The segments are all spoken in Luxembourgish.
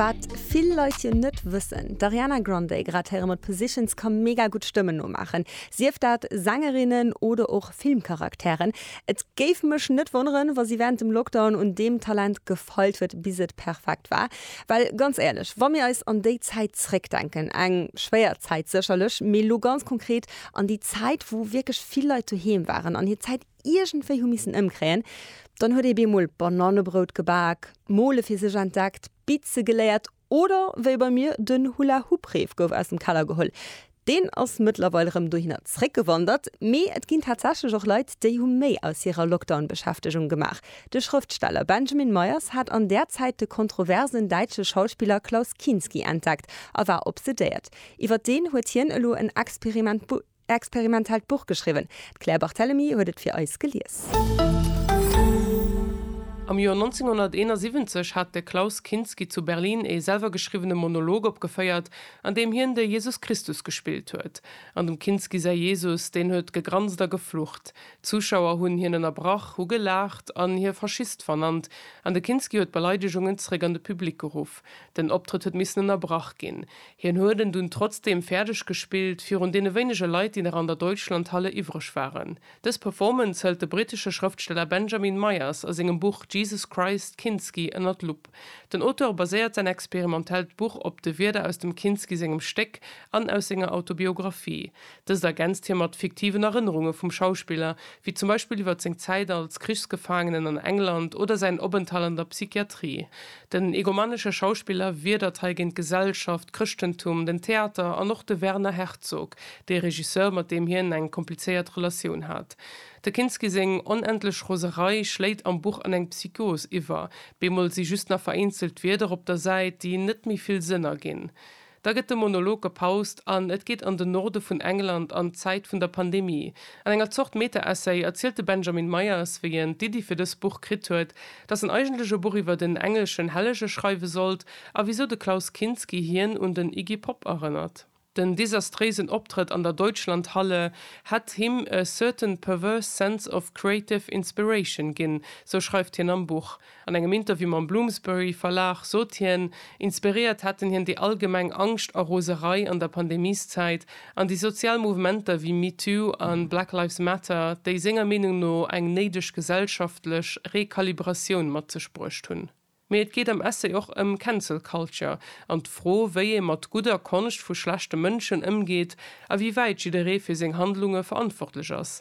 Wat vill Leit jo net wëssen, d'Ariana Grande, grad héiere mer, d'Positions ka mega gutt Stëmmen nomaachen, sief dat Sängerinnen oder och Filmcharakteren. Et géif mech net wonneren, wa si wärend dem Lockdown un deem Talent gefeilt huet, bis et perfekt war. Well ganz éierlech, wa mir eis an déi Zäit zréckdenken, eng schwéier Zäit sécherlech, mee lo ganz konkret an déi Zäit, wou wierklech vill Leit doheem waren an hir Zäit, iergendwéi hu missen ëmkréien, dann huet ee bemol Banannebrout gebak, d'Mole fir sech entdeckt, Bitze geléiert oder wéi bei mir den Hula-Hoop-Reef gouf aus dem Keller geholl. Deen ass mëttlerweil rëm dohinner zréckgewandert. Mee et ginn tatsächlech och Leit, déi hu méi aus hirer Lockdown-Beschäftegung gemaach. De Schrëftsteller Benjamin Meyers hat an där Zäit de kontroversen däitsche Schauspiller Klaus Kinski entdeckt a war obsedéiert. Iwwer deen huet hien elo en Experiment Experimentelt Buch geschriwwen. D'Claire Barthelemy huet et fir eis gelies. Am Joer 1971 hat de Klaus Kinski zu Berlin ee selwer geschriwwene Monolog opgeféiert, an deem hien de Jesus Christus gespillt huet. An dem Kinski säi Jesus, deen huet gegranst a geflucht. D'Zuschauer hunn hien ënnerbrach, hu gelaacht an hie Faschist vernannt, an de Kinski huet d'Beleidegungen zréck an de Public geruff. Den Optrëtt huet missen ënnerbrach ginn. Hien huet en dunn trotzdeem fäerdeg gespillt, virun deene wéinege Leit, déi nach an der Deutschlandhalle iwwreg waren. Dës Performance hëlt de brittesche Schrëftsteller Benjamin Myers a sengem Buch Jesus Christ, Kinski ënner d'Lupp. Den Auteur baséiert säin experimentellt Buch op de Wierder aus dem Kinski sengem Stéck an aus senger Autobiographie. Dëst ergänzt hie mat fiktiven Erënnerunge vum Schauspiller, wéi zum Beispill iwwer seng Zäit als Krichsgefaangenen an England oder säin Openthalt an der Psychiatrie. Den egomanesche Schauspiller wiedert hei géint d'Gesellschaft, d'Chrëschtentum, den Theater an och de Werner Herzog, dee Regisseur, mat deem hien eng komplizéiert Relatioun hat. De Kinski seng onendlech Roserei schléit am Buch an eng Psychos iwwer, bemol si just nach vereenzelt Wierder op der Säit, déi net méi vill Sënn erginn. Da gëtt de Monolog gepaust an et geet an den Norde vun England an d'Zäit vun der Pandemie. An enger Zort Meta-Essay erzielt de Benjamin Myers, wéi en d'Iddi fir dës Buch kritt huet, datt en eigentlech e Buch iwwert en engleschen Hellege schreiwe sollt a wisou de Klaus Kinski hien un den Iggy Pop erënnert. Den desastréisen Optrëtt an der Deutschlandhalle hätt him a certain perverse sense of creative inspiration ginn, sou schreift hien am Buch. An engem Interview mam Bloomsbury Verlag sot hien, inspiréiert hätten hien déi allgemeng Angscht a Roserei an der Pandemieszäit an déi sozial Mouvementer wéi MeToo a Black Lives Matter, déi senger Meenung no eng néideg gesellschaftlech Rekalibratioun mat sech bruecht hunn. Mee et geet am Essay och ëm Cancel Culture an d'Fro, wéi ee mat gudder Konscht vu schlechte Mënschen ëmgeet a wéi wäit jidderee fir seng Handlunge verantwortlech ass.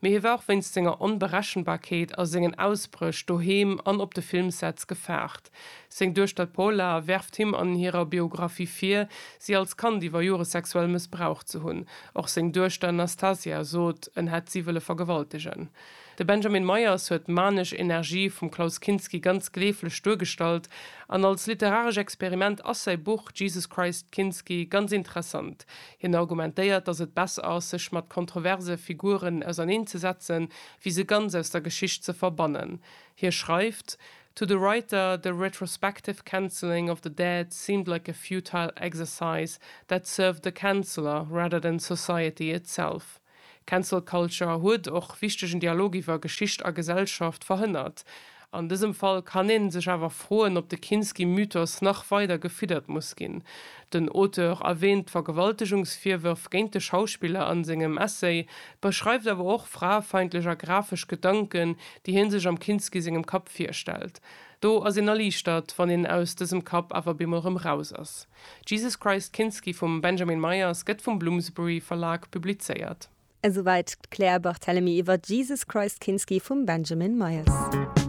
Mee hie war och wéinst senger Onberechenbarkeet a sengen Ausbréch doheem an op de Filmsets gefaart. Seng Duechter d'Paula werft him an hirer Biographie vir, si als Kand iwwer Jore sexuell mëssbraucht ze hunn. Och seng Duechter Nastasia sot, en hätt si wëlle vergewaltegen. De Benjamin Meyers huet d'manesch Energie vum Klaus Kinski ganz gleeflech duergestallt an als literaresch Experiment ass säi Buch Jesus Christ Kinski ganz interessant. Hien argumentéiert, datt et besser ass, sech mat kontroverse Figuren auserneen ze setzen, wéi se ganz aus der Geschicht ze verbannen. Hie schreift, To the writer, the retrospective cancelling of the dead seemed like a futile exercise that served the canceller rather than society itself. Cancel Culture huet och wichtegen Dialog iwwer Geschicht a Gesellschaft verhënnert. An dësem Fall kann een sech awer froen, ob de Kinski-Mythos nach weider gefiddert muss ginn. Den Auteur erwäänt d'Vergewaltegungsvirwërf géint de Schauspiller a sengem Essay, beschreift awer och fraefeindlech a grafesch Gedanken, déi hie sech am Kinski sengem Kapp virstellt. Do ass een erliichtert, wann een aus dësem Kapp awer bemol rëm raus ass. Jesus Christ Kinski vum Benjamin Myers gëtt vum Bloomsbury Verlag publizéiert. Esouwäit d'Claire Barthelemy iwwer Jesus Christ Kinski vum Benjamin Myers.